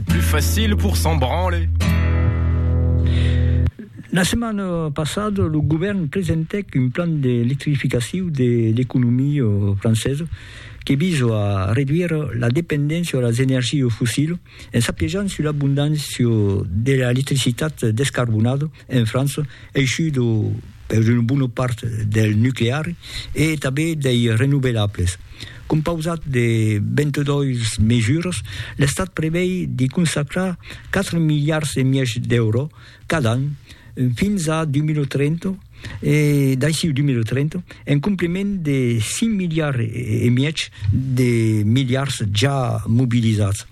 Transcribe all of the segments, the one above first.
Plus facile pour s'en branler. La setmana passada, lo govèrn presentèc un plan d'electrificacion de l'economia francesa que visa a reduire la dependéncia a las energias fossilas en s'apejant sus l'abondància de l'electricitat descarbonada en França, eishut per una bona part del nuclear e tanben dei renovelables. Compausat de 22 mesuras, l'Estat prevei de consacrar 4 miliards e mièg d'euro cada an fins a 2030 e d'aiciu 2030, en compliment de 5 miliards e mièg de miliards ja mobilizats.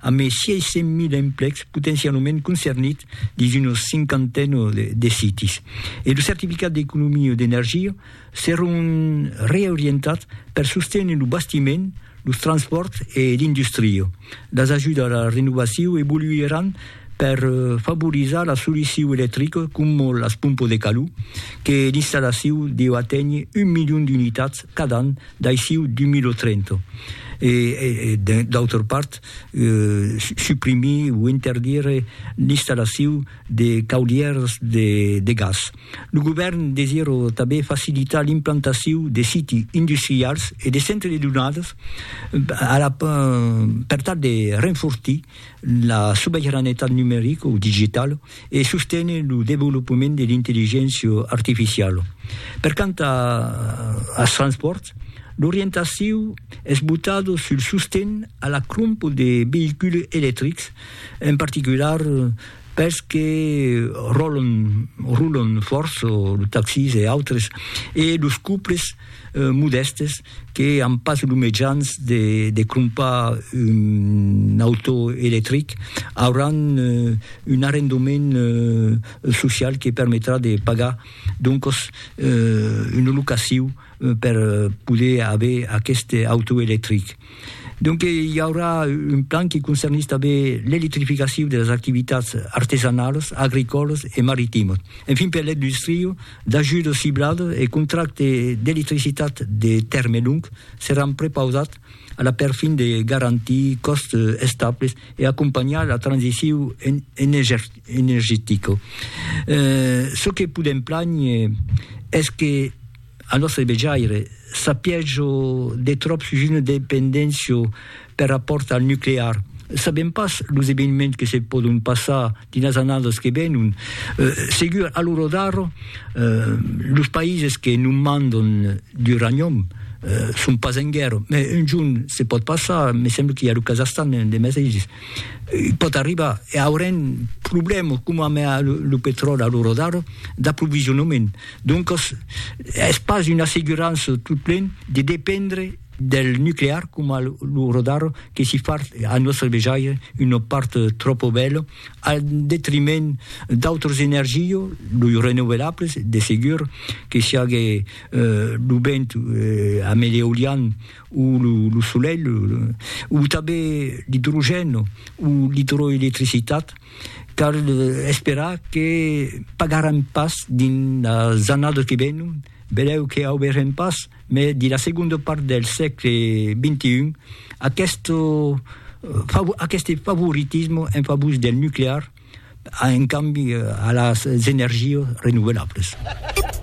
amb es 600.000 emplecs potencialament concernits dins una cinquantena de sites, e lo certificat d'economia d'energia seràn reorientats per sostener lo bastiment, los transpòrts e l'industria. Las ajudas a la renovacion evoluiràn per favorizar la solucion electrica coma las pompas de calor, que l'installacion deu aténher un milion d'unitats cada an D'aixiu dumir lo Trento e, d'autra part, suprimir o interdire l'installaciu de caudièrs de gas. Lo govèrn desirò tanben facilitar l'implantaciu de siti industrials e de centres de donadas per tal de renfortir La sobeiranetat numerica o digitala e sostene lo devolopament de l'intelligéncia artificiala. Per quant als transpòrts, l'orientaciu es botada sul sosten a la crompa de veïculs electrics, en particular pels que rolan fòrça, los taxis e autres, e los cuples modèstes que an pas lo mejans de, de crompar un auto electric, auràn un arrendament social que permetrà de pagar doncos una locaciu per poder aver aqueste auto electric. Donque i aurà un plan que concernís tanben l'electrificaciu de las activitats artesanalas, agricòlas e maritimos. Enfin, per l'industria, D'ajut ciblad e contracte d'electricitat de tèrme long seràn prepausats a la per fin de garantir còsts estables e acompanhar la transiciu energetica. Çò que podèm plànher es que, al nòstre vejaire, s'apièja de tròp sus una dependéncia Per rapòrt al nuclear, sabèm pas los eveniments que se pòdon passar dins las annadas que venon. Segur, a l'ora d'ara, los païses que non mandon d'uranium son pas en guèrra, me un jorn se pòt passar, me sembla qu'i a lo Kazahstan de mesaisses, pòt arribar e aurem problèmas coma amé lo petròli a l'ora d'ara d'aprovisionament. Doncas es pas una assegurança totplen de dependre. del nuclear coma lo rodar que si far a nòstre vejaire una part tròpo bèla al detriment d'autres energio los renovelables de segur que siague lo vent a me l'eolian o lo solelh o tanben l'idrogèn o l'idroelectricitat cal esperar que pagaràn pas dins las annadas que venon belèu que auberem pas Mès dins la segonda part del sègle xxi, aqueste favoritisme en favor del nuclear a un cambi a las energias renovelables.